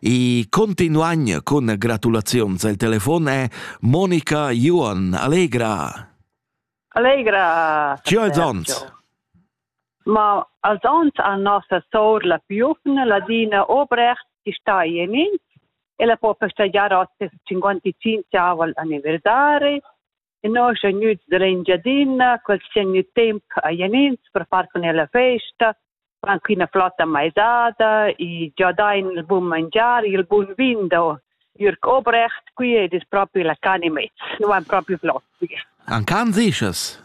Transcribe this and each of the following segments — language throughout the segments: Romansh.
E continuagna con gratulazions al telefon è Monica Juon. Allegra! Allegra! Ci als ons? Ma als ons a nossa sour la piufna, Ladina Obrecht, chi sta in ins, ella po festegiar oz ses 55 aval anniversari E noi sun gnüts dall'Engiadina, quels chi han gnü temp a Jenins per far cun el la festa, fan quina flotta maisada e già dain il bun mangiar, il bun vin da Jürg Obrecht qui ed es propi la can e mez, nu han propi flot qui. An can sichas?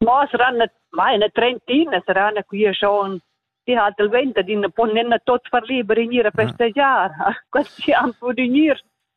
Mo saranno, ma eine trentina saranno qui schon die hat die Welt, die pon nicht tot verlieben in ihre Feste Jahr. Quasi haben wir die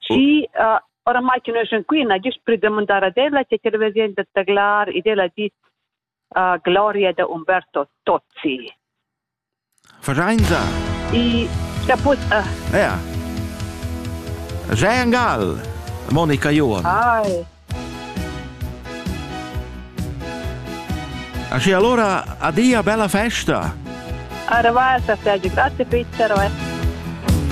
Schi, oramai che nus sun qui, n'ha gist plü damondar ad ella che television da taglar ed ella ha dit gloria da Umberto Tozzi. Verein I caput... Uh. Ja. Jay Angal, Monica Johan. Ai. Asci allora, adia, bella festa. Arvasa, Sergio, grazie Peter.